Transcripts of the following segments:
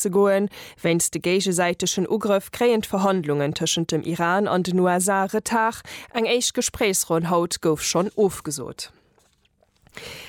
ze goen. Wéinst de géigesäitegen Ugrëff kréien d'Verhandlungen tëschent dem Iran an den USA Retard. Eng éischt Gespréichsronn haut gouf schonn ofgesot.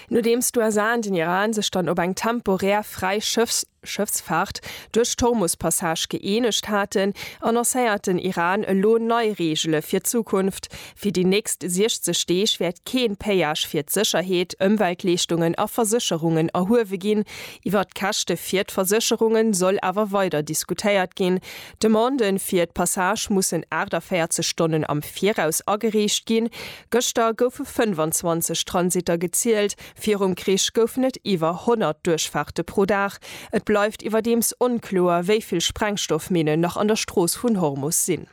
Nodeems d'USA an den Iran sech dann op eng temporär fräi Schëffsfaart duerch d'Hormus-Passage gëeenegt haten, annoncéiert den Iran elo nei Reegele fir d'Zukunft. Fir déi nächst 60 Deeg wäert kee Péage fir d'Sécherheet, Ëmweltleeschtungen a Versécherungen erhuewe ginn. Iwwert d'Käschte fir d'Versécherunge soll awer weider diskutéiert ginn. D'Demande fir d'Passage mussen 48 Stonnen am Viraus agereecht ginn. Gëschter goufe 25 Transitter gezielt, virum Krich goufen et iwwer 100 Duerchfaarte pro Dag. Et bleift iwwerdeems onkloer, wéi vill Sprengstoffminnen nach an der Strooss vun Hormus sinn.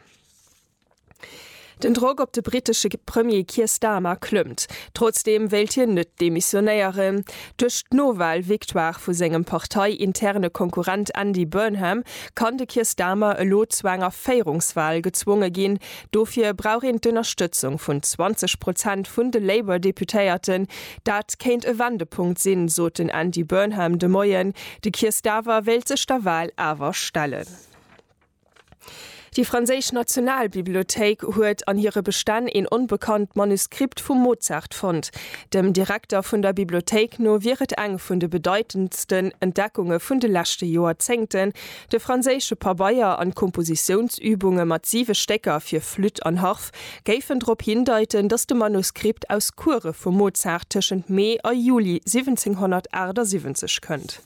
Den Drock op de brittesche Premier Keir Starmer klëmmt. Trotzdeem wéilt hien net demissionéieren. Duerch d'Nowal-Victoire vu sengem partei-interne Konkurrent Andy Burnham kann de Keir Starmer elo zu enger Féierungswal gezwonge ginn. Dofir brauch een d'Ënnerstëtzung vun 20 Prozent vun de Labour-Deputéierten. Dat kéint e Wendepunkt sinn, sot den Andy Burnham de Moien. De Keir Starwer wéilt sech der Wal awer stellen. Déi franséisch Nationalbibliothéik huet an hire Bestänn een onbekannt Manuskript vum Mozart fonnt. Dem Direkter vun der Bibliothéik no wier et eng vun de bedeitendsten Entdeckunge vun de leschte Joerzéngten, de franséische Pabeier an d'Kompositiounsübunge mat siwe Stécker fir Flütt an Harf géifen drop hindeiten, datt de Manuskript aus Course vum Mozart tëschent Mee a Juli 1778 kënnt.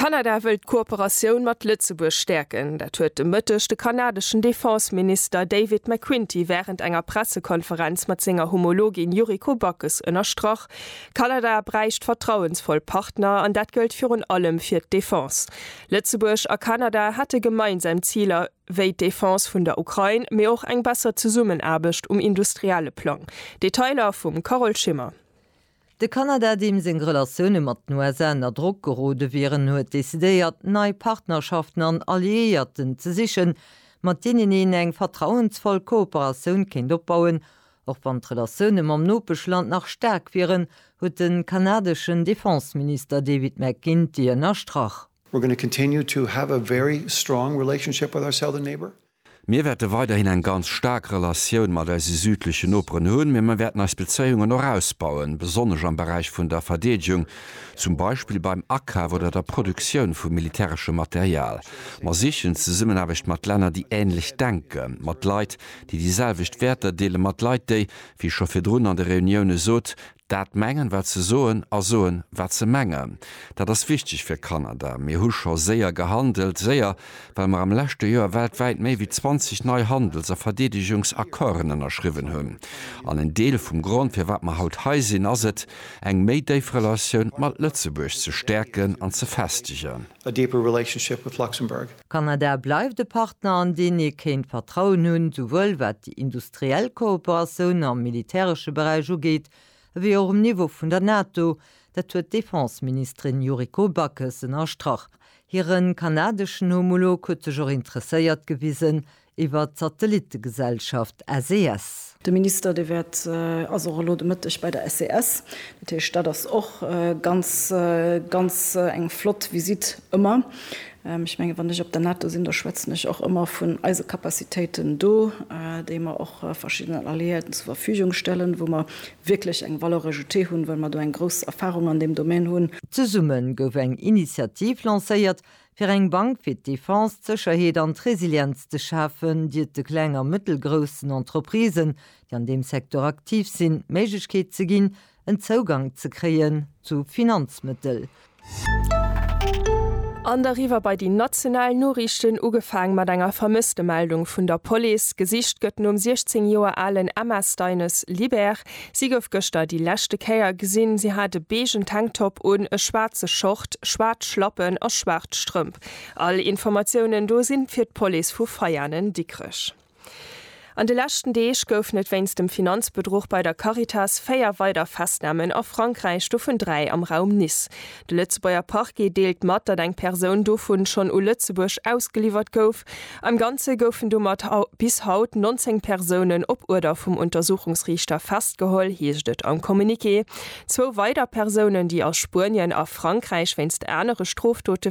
Kanada wëll d'Kooperatioun mat Lëtzebuerg stäerken. Dat huet de Mëtteg de kanadeschen Defense-Minister David McQuinty wärend enger Pressekonferenz mat senger Homologin Yuriko Backes ënnerstrach. Kanada bräicht vertrauensvoll Partner an dat gëllt virun allem fir d'Defense. Lëtzebuerg a Kanada hätte gemeinsam Ziler wéi d'Defense vun der Ukrain, mee och eng besser Zesummenaarbecht um industrielle Plang. Detailer vum Carole Schimmer. De Kanada, deem seng Relatioune mat den USA ënner Drock gerode wieren, huet decidéiert, nei Partnerschaften an Alliéierten ze sichen, mat deenen een eng vertrauensvoll Kooperatioun kéint opbauen. Och wann d'Relatioune mam Nopeschland nach staark wieren, huet de kanadeschen Defenseminister David McGuinty ënnerstrach. Mir wäerte weiderhin eng ganz staark Relatioun mat eise südlechen Noperen hunn, mee mir wäerten eis Bezéiungen och ausbauen, besonnesch am Beräich vun der Verdeedegung, zum Beispill beim Akaf oder der Produktioun vu militäreschem Material. Mer sichen d'Zesummenaarbecht mat Länner, déi änlech denken, mat Leit, déi déi selwecht Wäerter deelen, mat Leit, déi, wéi ech scho virdrun an de Reunioune sot, Dat mengen wat se soen a soen wat se mengen, dat ass wichteg fir Kanada. Mir hu scho séier gehandelt, séier well mer am leschte Joer weltwäit méi wéi 20 nei Handels a Verdeedegungsaccorden ënnerschriwwen hunn. An en Deel vum Grond firwat mer haut hei sinn ass et, eng méi déif Relatioun mat Lëtzebuerg ze stäerken an ze festegen. Kanada bleift e Partner an deen ee kéint Vertrauen hunn, souwuel wat déi industriell d'reell Kooperatioun am militäresche Beräich ugeet, ewéi och um Niveau vun der NATO, dat huet d'Defenseministerin Yuriko Backes ënnerstrach. Hire kanadeschen Homolog huet sech och interesséiert gewisen iwwer d'Satellittegesellschaft SES. De Minister, dee wäert, ass och elo de Mëtteg bei der SES. Dat heescht, dat ass och ganz, ganz eng flott Visitt ëmmer. Ech mengen, wann ech op der NATO sinn, da schwätzen ech och ëmmer vun eise Capacitéiten do, déi mer och verschiddenen Alliéierten zur Verfügung stellen, wou mer wierklech eng Valeur ajoutée hunn, well mer do eng grouss Erfahrung an deem Domän hunn. Zesumme gouf eng Initiativ lancéiert, fir eng Bank fir d'Defense, d'Sécherheet an d'Resilienz ze schafen, déi et de kleng a mëttelgroussen Entreprisen, déi an deem Secteur aktiv sinn, d'Méiglechkeet ze ginn, en Zougang ze kréien zu Finanzmëttel. An deriwwer bei déi national Noriichten, ugefaang mat enger Vermësstemeldung vun der Police. Gesicht gëtt nom 16 Joer alen Emma Steines Libert. Si gouf gëschter déi leschte Kéier gesinn. Si hat e beegen Tanktop un, e schwaarze Short, schwaarz Schlappen a schwaarz Strëmp. All Informatiounen do si fir d'Police vu Veianen-Dikrech. An de leschten Deeg goufen et wéinst dem Finanzbedruch bei der Caritas véier weider Festnamen a Frankräich, dovun dräi am Raum Nice. De Lëtzebuerger Parquet deelt mat, datt eng Persoun dovu schonn u Lëtzebuerg ausgeliwwert gouf. Am Ganze goufen domat bis haut 19 Persounen op Uerder vum Untersuchungsriichter festgeholl, heescht et am Communiqué. Zwou weider Persounen, déi a Spuenien a Frankräich wéinst anere Strofdote